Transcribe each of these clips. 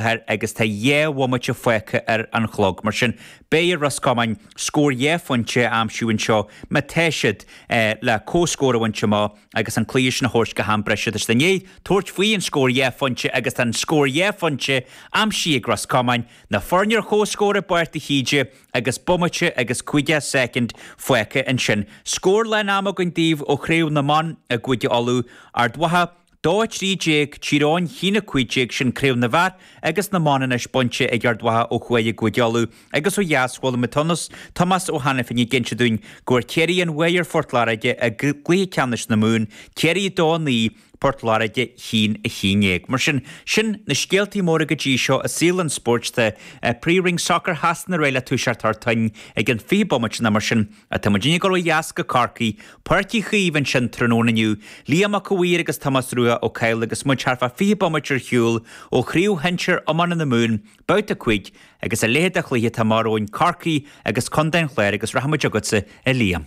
thoir agus tá dhá bhomaite fágtha ar an chlog. Mar sin, beidh ar Ros Comáin scór dhá phointe a aimsiú anseo má tá siad le comhscór a bhaint amach agus an cluiche sin a thabhairt go ham breise. Tá siad i ndiaidh tabhairt faoi an scór dhá phointe agus tá an scór dhá phointe aimsithe ag Ros Comáin, na foirne ar comhscór i bPáirc de hÍde agus bomaite agus caoga soicind fágtha. Ansin, scór lán ama againn daoibh ó Chraobh na mBan i gCúige Uladh, Ard Mhacha, 2 13, Tír Eoghain, 1 15 sin craobh na bhfear agus na mban anois bainte ag Ard Mhacha ó thuaidh i gCúige Uladh agus ó dheas chuala mé Tonnus Tomás Ó hAiniféin ag inse dúinn go bhfuair Ciarraí an bhuaidh ar Phort Láirge i gcluiche ceannais na Mumhan, Ciarraí 2 9, Port Láirge 1 11. Mar sin, sin na scéaltaí móra go dtí seo i saol an spóirt tá Príomhroinn Sacair Shasana réidh le toiseacht thar toinn i gceann 20 bomaite nó mar sin. Ach tá muidinne ag dul ó dheas go Corcaigh, Páirc Uí Chaoimh ansin tráthnóna inniu, Liam Mac a' Mhaoir agus Tomás Rua Ó Cadhla agus muid thart fá 20 bomaite ar shiúl ó Chraobh Shinsear Iomána na Mumhan, Babhta 5, agus a leithéid de chluiche atá amach romhainn, Corcaigh agus Contae an Chláir agus rachaimid chugatsa a Liam.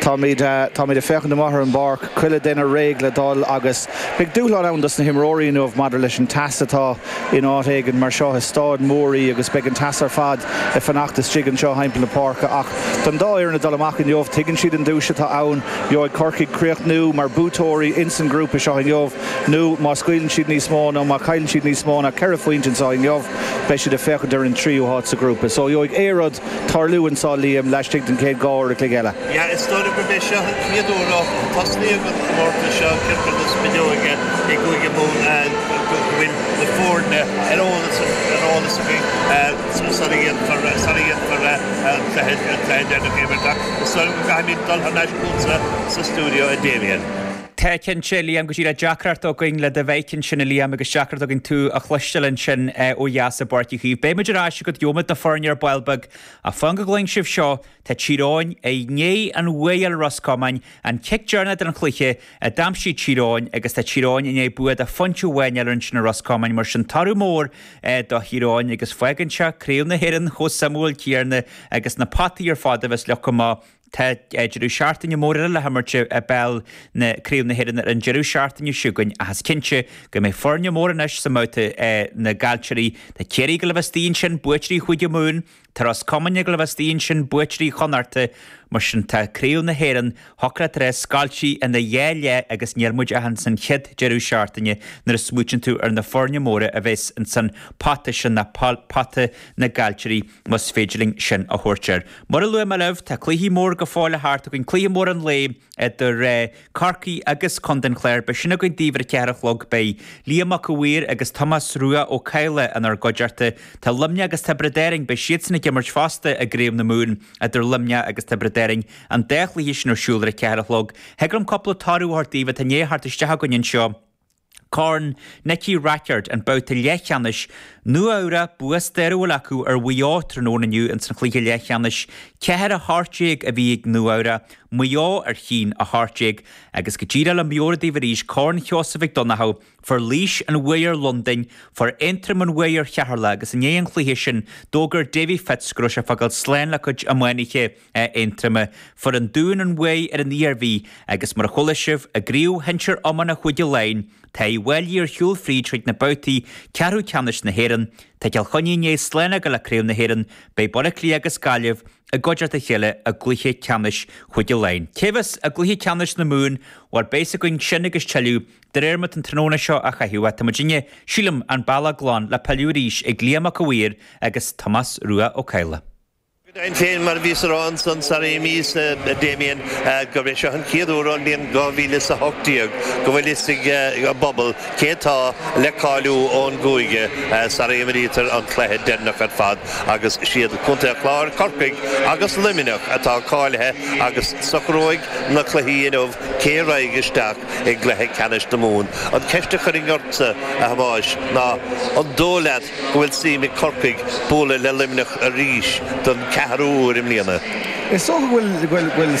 Táimid, táimid ag féachaint amach ar an bpáirc, chuile dhuine réidh le dhul agus beidh dúshlán ann dos na himreoirí inniu maidir leis an teas atá in áit éigin mar seo, is staid mhór í agus beidh an teas ar fad ag fanacht istigh anseo thimpeall na páirce ach don dá fhoireann ag dul amach inniu, tuigeann siad an duais atá ann, gheobhaidh Corcaigh críochnú mar buaiteoirí ins an grúpa seo inniu nó má scaoileann siad níos mó nó má chailleann siad níos mó ná ceithre phointe anseo inniu beidh siad ag féachaint ar an tríú háit sa ghrúpa so gheobhaidh aon rud tarlú anseo Liam laistigh den chéad dhá uair an chloig eile. Yeah is dóigh gurb é seo an chéad uair ó tosnaíodh an comórtas seo Craobh na Spideoige i gCúige Mumhan go bhfuil na foirne ar eolas againn sara dhéanfar an cluiche deireanach imeartha. Is dóigh liom go gcaithfimid dul thar n-ais chugatsa sa stiúideo a Damien. Tá, cinnte, a Liam, go dtí le deacracht againn le do mhic ansin, a Liam, agus deacracht againn tú a chloisteáil ansin ó dheas i bPáirc Uí Chaoimh. Beidh muid ar ais agat, gheobhaimid na foirne ar ball beag, ach fan go gcluin sibh seo, tá Tír Eoghain i ndiaidh an bhuaidh a fháil ar Ros Comáin, an cic deireanach den chluiche a d'aimsigh Tír Eoghain, agus tá Tír Eoghain i ndiaidh bua de phointe amháin a fháil ansin ar Ros Comáin, mar sin toradh mór do Thír Eoghain, agus fágann seo Craobh na hÉireann chomh suimiúil céarna agus na potaí ar fad a bheas leo comh maith. Tá deireadh seachtaine mór eile le himirt i bpeil na Craobh na hÉireann ar an deireadh seachtaine seo chugainn ach is cinnte go mbeidh foirne móra anois sa mbabhta na gcaillteoirí. Tá Ciarraí ag gabháil a bheith istigh ansin buaiteoirí Chúige Mumhan, tá Ros Comáin ag gabháil a bheith istigh ansin buaiteoirí Chonnacht. Mar sin tá Craobh na hÉireann thiocfadh leat a rá scoilte ina dhá leath agus níl muid ach insan chéad deireadh seachtaine nuair a smaoitíonn tú ar na foirne móra a bheas insan bpota sin, pota na gcaillteoirí. más féidir linn sin a thabhairt air. Mar a luaigh mé libh, tá cluiche mór go fóill le theacht againn, cluiche mór an lae idir Corcaigh agus Contae an Chláir, beidh sin againn daoibh ar a ceathair a chlog, beidh Liam Mac a' Mhaoir agus Tomás Rua Ó Cadhla inár gcuideachta, tá Luimneach agus Tiobraid Árainn, beidh siadsan ag imirt fosta i gCraobh na Mumhan idir Luimneach agus Tiobraid Árainn, an dá chluiche sin ar siúl ar a ceathair a chlog. Thig orm cúpla toradh a thabhairt daoibh atá i ndiaidh a theacht isteach againn anseo, Corn Nicky Rackard, an babhta leathcheannais, Nua-Eabhrac, bua stairiúil acu ar Mhaigh Eo tráthnóna inniu ins an chluiche leathcheannais. Ceathair a hocht déag a bhí ag Nua-Eabhrac, Maigh Eo a haon a hocht déag agus go díreach le meabhrú daoibh arís Corn Sheosaimh Mhic Donnchadha, fuair Laois an bhuaidh ar Londain, fuair Aontroim an bhuaidh ar Cheatharlach agus i ndiaidh an chluiche sin d'fhógair Davy Fitz go raibh sé ag fágáil slán le cuid iománaithe. Aontroma, fuair an Dún an bhuaidh ar an Iarmhí agus mar a chuala sibh i gcraobh shinsir iomána Chúige Laighean tá Uíbh Fháilí ar shiúl fríd chuig na babhtaí ceathrú ceannais na hÉireann. Tá Cill Chainnigh i ndiaidh slán a fhágáil le craobh na hÉireann. Beidh Baile Átha Cliath agus Gaillimh i gcuideacht a chéile i gcluiche ceannais Chúige Laighean. Cé bheas i gcluiche ceannais na Mumhan? Bhuel beidh 's againn sin agus tuilleadh de réir mar atá an tráthnóna seo á chaitheamh. Tá muidinne, sílim, an bealach glan le pilleadh arís ag Liam Mac a' Mhaoir agus Tomás Rua Ó Cadhla. Go deimhin féin, mar a bhíos a rá ansan sarar imíos, a Damien, gurb é seo an chéad uair ón mbliain 2018 go bhfuil fhios ag an bpobal cé atá le cáiliú ón gcúige sara imrítear an cluiche deireanach ar fad agus is iad Contae an Chláir, Corcaigh agus Luimneach atá cáilithe agus socróidh na cluichí inniu cé raghaidh isteach i gcluiche ceannais na Mumhan. An ceist a chuirfinn ortsa, a Thomáis, ná an dóigh leat, go bhfuil suim ag Corcaigh bualadh le Luimneach arís don ceathrú uair i mbliana. Is dócha go bhfuil.